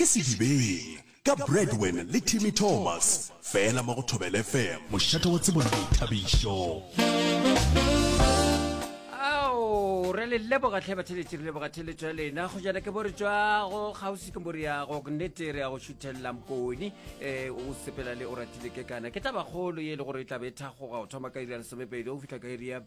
Ke Sedibeng ka Bradwin le Timmy Thomas fela mo go Thobela FM. Mošate wa tsebo le boithabišo. Ao, re le leboga tlhe batheletši re leboga theletšo ya lena go jana ke bore tšwago kgauswi ke bore yago nnete re ya go šuthelela mpone um o sepela le o ratile ke kana ke tabakgolo ye e le gore e tlabe e thagoga go thoma ka iri ya lesomepedi go fitlha ka iri ya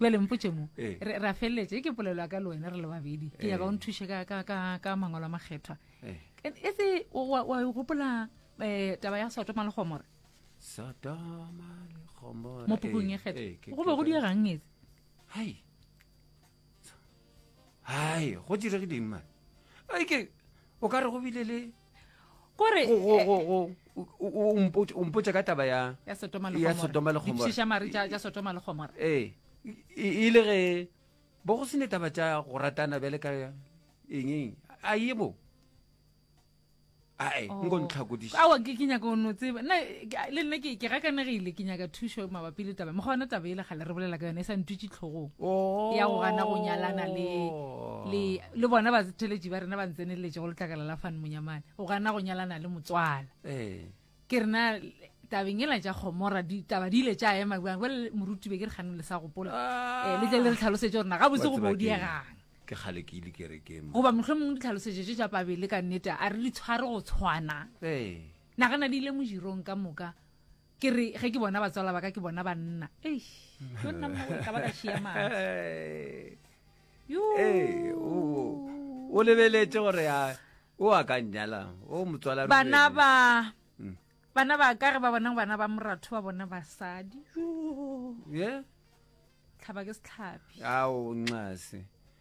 bjale mpotše mo eh. re a feleletša e ke polelo ya ka le wena re le babedi ke nyaka o eh. nthuše ka mangwalo a makgethwa eh. e se wa e gopola um taba ya sotoma le gomora mo pukung e kgetho go be go diegang etse hai hai go diregileng mane a ke o ka re go bile le kore o mpotsa ka taba ya ya sotoma le sotoma le gomora ee e le ge bo go se ne taba tša go ratana bjale ka eng a ye bo ae oh. nko ntlhakodisa awa ke nyaka o no tseba nna le nna ke ke gakanegile ke nyaka thušo mabapi le taba moga yona taba e le gale re bolela ka yone e sa ntutše tlhogong oh. ya go gana go nyalana le le le bona batheletši ba rena ba ntseneletše go letlakala la fane monyamane o gana go nyalana le motswala ee. ke rena tabeng ela tša gomora ditaba di ile tša ema bjang jale morutibe ke re kganeng le sa gopola ah. eh, le tle le re tlhalosetse gore na gabotse go bodiegang ke kgale ke ile kerekeng goba motlho mongwe ditlhalosetse tše tša pabele ka nnete a re di tshware go tshwana ee. nagana di ile mojirong ka moka ke re ge ke bona batswala ba ka ke bona banna ei yo nna mma ka ba ka šia matsi yo Ee, o o lebeletse gore a o a ka nyala o motswala ruri. bana ba Mm. bana ba ka ge ba bona bana ba moratho ba bona basadi yo Ye? tlhaba ke setlhabi ao nxase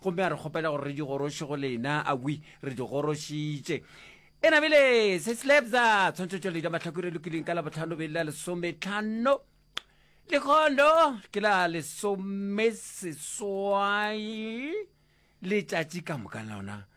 Gomme a re kgopela gore re di goroše go lena, a wi, re di gorošitše. E namile, se slabza, tshwantšhotšweledi ya mahlakore e lokileng ka labotlhano beng la lesometlhano. Lekgondo ke la lesomeseswai letšatši ka moka lona.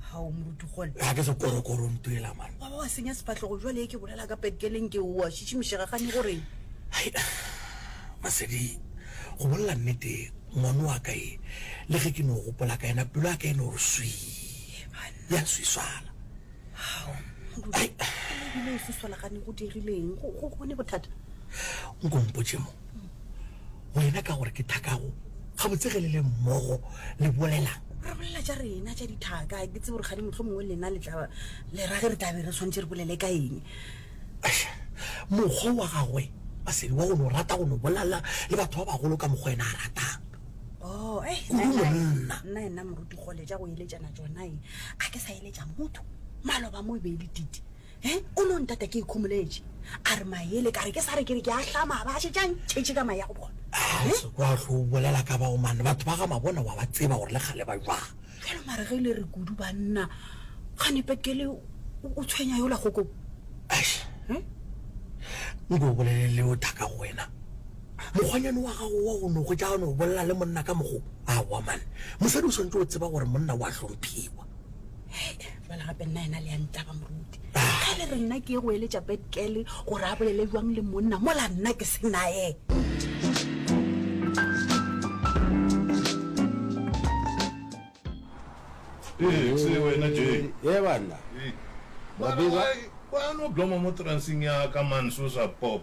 ga o moruti gone ga ke sekorokoro ntuela mane wa ba wa senya sefatlhogo jwale e ke bolela ka petkeleng ke oa šišimišega gane gore masedi go bolela nnete ngwano wa ka e le ge ke no gopola ka ena pelo ya ka e no re swi ya swiswana ebile e swiswana gane go dirileng go gone bothata nkompotše mo wena ka gore ke thakago gabotse ge le le mmogo le bolelang re bolela tša rena tša dithaka ke tsebo gore ga di motlho mongwe lena le tla le rage re tlabe re tshwanetse re bolele ka eng mokgwa wa gagwe a sedi wa go no rata go no bolala le batho ba bagolo ka mokgwa ena a ratang oh, eh, nna ena moruti gole ja go eletšana tsona e a ke sa eletša motho maloba mo e be e le tite He, o no ntata ke ikhomoletše, a re maele, ka re ke sa re ke re ke a hlama, a ba a šetše a ntšhetše ka mae ya go bona. He. Se kwa hlo o bolela ka bao mane, batho ba ga Mabona wa ba tseba gore le kgale ba jwang. Bjale mare ge e le re kudu banna, kgane Petkele o tshwenya yola kgokong? Eish. He. Nko o bolele le o thaka go wena. Mokgwanyane wa gago wa go no hwetša a no bolela le monna ka mokgo, aowa mane. Mosadi o swanetše go tseba gore monna wa hlomphiwa. jale gape nna ena le ya ntlaba moruti ga le re nna ke ye go eletša petkele gore a bolele jwang le monna mola nna ke senaye ee wena j ee banna mabeba wa no bloma mo transeng ya ka manso sa pop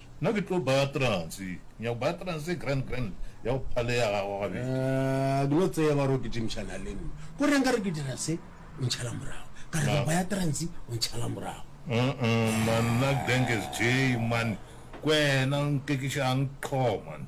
Nna ke tlo baya transe. Nyako baya transe grand grand ya go phale ya gago gabedi. Ahh ke no tseba gore o kitimšana le nna. Ko reng ka re ke dira se o ntšhala morago. Ka re ke baya transe o ntšhala morago. Uh-uh man nna Dengez Jay man kwena nkekišang qho man.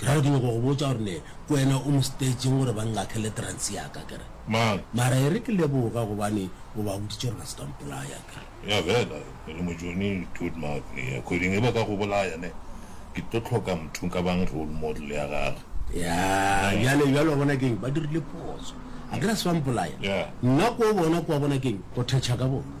Ke ra gore ke nyaka go botša gore ne ke wena o mo stage-ng gore ba nngakele trance ya ka ke re. Mang? Mara e re ke leboga gobane o ba boditše gore ba se ka mpolaya ke re. Ya fela e le mojoni dude mara ya kgweding e ba ka go bolaya ne ke tlo hloka motho nka bang role model ya gage. Ya bjale bjale wa bona keng ba dirile phoso a ke re se ba mpolaya nna ko bona kwa bona keng go thetšha ka bona.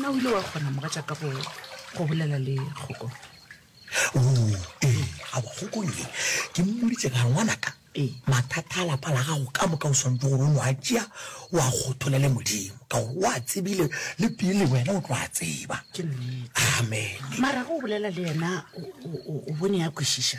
Na o ile wa kgona, mogatšaka, go, go bolela le kgoko? Oo, ee, awa kgokong ye. Ke mmoditše ka ngwanaka, Ee. mathata a lapa la gago ka moka o swantse gore o no a tšea o a kgothulele Modimo, ka gore o a tsebile le pele wena o tlo a tseba. Ke nnete. Amene. Mara ge o bolela le yena, o, o, o, o bone a kwešiša.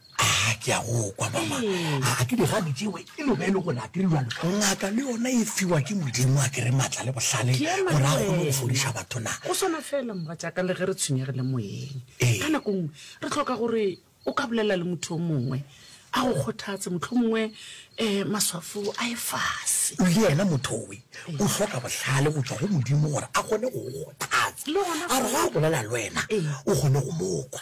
a ke a go kwa mama a ke digadi tsewe e lobe e le gona ke rirwalo ngaka le yona e fiwa ke modimo a kere maatla le bohlale gore a kgone go fodiša batho na go swana fela moga jaaka le ge re tshwenyegile moyeng ka nako nngwe re tlhoka gore o ka bolela le motho o mongwe a go kgothatse motlho mongwe um maswafo a e fase le yena mothowe o hloka bohlale go tswa go modimo gore a kgone go go kgothatsa a re ga a bolela le wena o kgone go mokwa